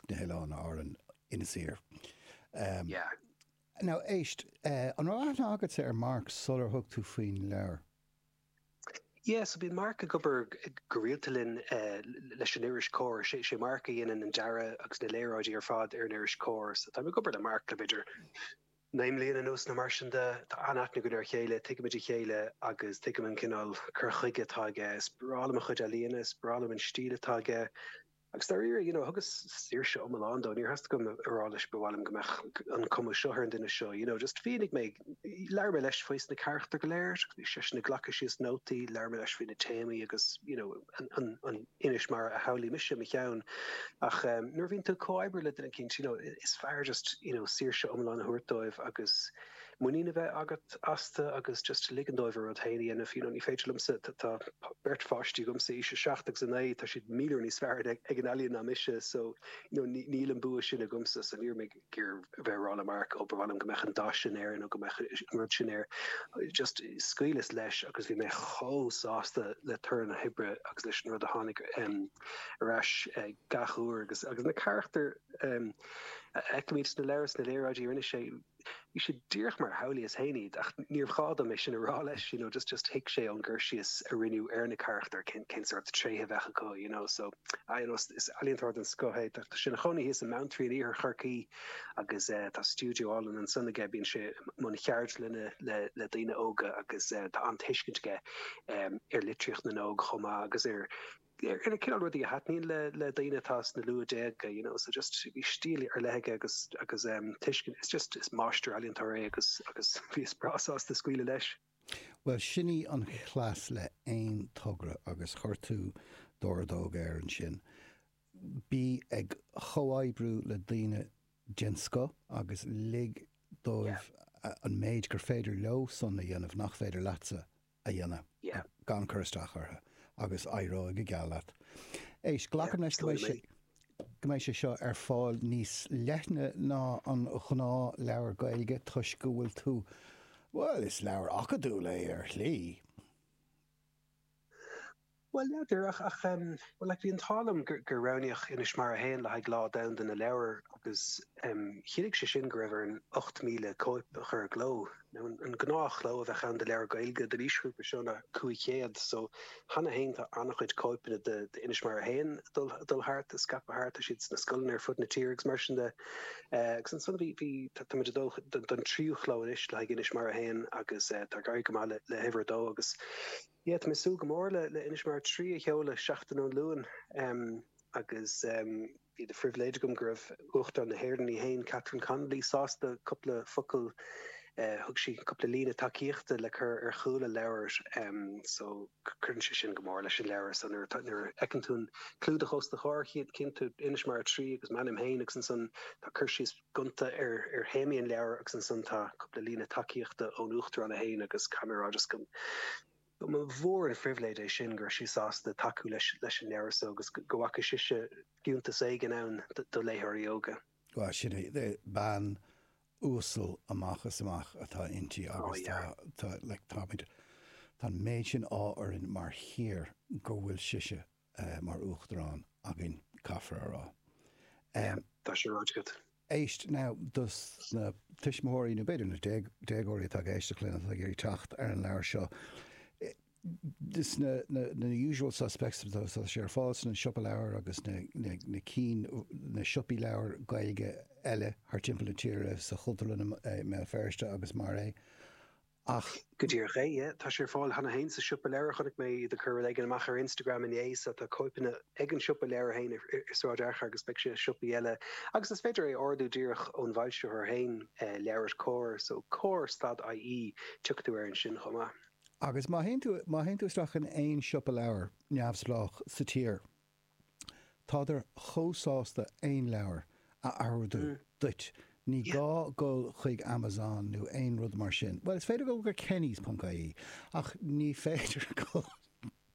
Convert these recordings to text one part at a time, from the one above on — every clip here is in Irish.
na hOileáin Árann, Inis Oírr. Yeah. Now, éist, an raibh aithne agatsa ar Mark sular thug tú faoin leabhar? Yeah, so bíonn Mark ag obair go rialta linn leis an iris Comhar. Sé Mark a dhéanann an dearadh agus na léaráidí ar fad ar an iris Comhar. So táim ag obair le Mark le b'fhéidir naoi mbliana anuas nó mar sin de. Tá an-aithne againn ar a chéile, tuigimid a chéile agus tuigim an cineál cur chuige atá aige. Is breá liom a chuid ealaíona, is breá liom an stíl atá aige. Agus dáiríre, you know, thugas saoirse iomlán dó, níor theastaigh uaim a rá leis 'ba mhaith liom go mbeadh an cuma seo ar an duine seo', you know, just mhínigh mé, labhair mé leis faoi na carachtair go léir, bhí seisean ag glacadh síos nótaí, labhair mé leis faoi na téamaí agus, you know, an, an, inis mar a shamhlaigh mise i mo cheann. Ach ehm, nuair a bhíonn tú ag comhoibriú le duine eicínt, you know, is fearr just, you know, saoirse iomlán a thabhairt dóibh agus, muinín a bheith agat astu agus just ligean dóibh a rud féin a dhéanamh. You know, ní féidir liomsa, tá beirt pháistí agamsa, aois 7 agus 9, tá siad míle uair níos fearr ag an ealaín ná mise, so you know, níl an bua sin agamsa, so ní raibh mé ag iarraidh a bheith ag rá le Mark, oh, ba mhaith liom go mbeadh an dath sin air nó go mbeadh an rud sin air. Just scaoileas leis agus bhí mé chomh sásta le toradh na hoibre agus leis an rud a tháinig um ar ais gach uair agus agus na carachtair um a fheicimid sna leabhair, sna léaráidí a rinne sé. Bhí sé díreach mar a shamhlaíos féin iad, ach níor ghá dom é sin a rá leis, you know, just, just thuig sé ón gcur síos a rinneadh ar na carachtair cén, cén sórt tréithe a bheadh acu, you know, so, ah, you know, is, is ealaíontóir den scoth é, tá sé ina chónaí thíos i mBeanntraí in iarthar Chorcaí agus eh tá stiúideo álainn ansan aige, bíonn sé i mbun cheardlainne le, le daoine óga agus eh tá an-tuiscint aige em ar litríocht na n-óg chomh maith agus ar, ar an cineál rudaí a thaitníonn le le daoine atá sna luathdhéaga you know so just bhí stíl ar leith aige agus agus em tuiscint it's just is máistir ealaíontóir é agus agus bhíos breá sásta scaoileadh leis. Bhuel sin í an chleas le aon togra agus chuir tú d'ordóg air ansin. Bí ag chomhoibriú le daoine den scoth agus lig yeah dóibh an méid gur féidir leosan a dhéanamh nach féidir leatsa a dhéanamh gan cur isteach orthu agus éireoidh go geal leat. Éist, glacaim leis go mbeidh sé seo ar fáil níos leithne ná an ghnáthleabhar Gaeilge toisc go bhfuil tú, bhuel, is leabhar acadúil é ar shlí. Bhuel, n'fheadar, ach, ach em, bhuel, like, bhí an t-ádh liom gur, gur roghnaíodh Inis Mara 1 le haghaidh Lá Domhanda na Leabhar agus em, chiallaigh sé sin go raibh orainn 8,000 cóip a chur i gcló. Now, an, an gnáthchló a bheadh ann do leabhar Gaeilge don aoisghrúpa seo ná 500, so cheana fhéin tá an-chuid cóipeanna de, de Inis Mara 1 ag dul, ag dul thart, á scaipeadh thart, tá siad sna scoileanna ar fud na tíre agus mar sin de. Eh, agus ansan bhí, bhí, tá, tá muid ag dul don, don tríú chló anois le haghaidh Inis Mara 1 agus eh, tá ag éirí go maith le, le huimhir a dó agus, Tá mé ag súil go mór le Inis Mara 3 a sheoladh seachtain ón Luan agus bhí de phribhléid agam go raibh Uachtarán na hÉireann í fhéin, Catherine Connolly, sásta cúpla focal, thug sí cúpla líne tacaíochta le cur ar chúl an leabhair so cuireann sé sin go mór leis an leabhar so nuair a fheiceann tú an clúdach os do chomhair, tchíonn tú Inis Mara 3 agus m'ainm fhéin agus ansan tá cur síos. gonta ar théamaí an leabhair agus ansan tá cúpla líne tacaíochta ón Uachtarán í féin agus caithfidh mé a rá just go mba mhór an phribhléid é sin go raibh sí sásta tacú leis an leabhar so agus go bhfaca sise fiúntas éigin ann do léitheoirí óga. Bhuel, sin í. Bean uasal amach is amach atá inti agus tá, tá, like, táimid, tá an méid sin ádh orainn mar thír go bhfuil sise eh, mar Uachtarán againn, caithfear a rá. Em. Tá sé ráite agat. Éist, now, dos na tuismitheoirí, nó b'fhéidir na déag, déagóirí atá ag éisteacht linn, atá ag iarraidh teacht ar an leabhar seo, eh, is na, na, na usual suspects atá, tá sé ar fáil sa Siopa Leabhar agus na, na, na cinn, na siopaí leabhar Gaeilge eile thar timpeall na tíre, sa Chultúrlann i, i mBéal Feirste agus mar é. Ach go díreach é, tá sé ar fáil cheana féin sa siopa leabhar. Chonaic mé iad ag cur rud éigin amach ar Instagram inné so tá cóipeanna ag an siopa leabhar féin i Sráid Fhearchair agus beidh sé i siopaí eile. Agus is féidir é a ordú díreach ón bhfoilsitheoir féin, LeabhairCOMHAR, so comhar stad IE, tiocfaidh tú air ansin chomh maith. Agus má théann tú isteach in aon siopa leabhar neamhspleách sa tír, Tádar chomh sásta aon leabhar a ordú duit, ní gá dul chuig Amazon nó aon rud mar sin. Bhuel, is féidir dul go Kennys.ie, ach ní féidir dul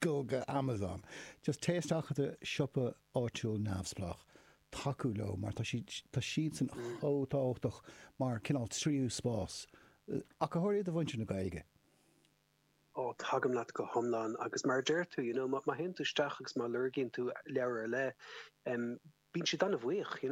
go Amazon. Just téigh isteach i do siopa áitiúil neamhspleách, tacú leo, mar tá siad, tá siadsan chomh tábhachtach mar cineál tríú spás, ach go háirithe do mhuintir na Gaeilge. Ó, tagaim leat go hiomlán. Agus mar a deir tú, you know má théann tú isteach agus má lorgaíonn tú leabhar ar leith, bíonn siad an-bhuíoch, you know.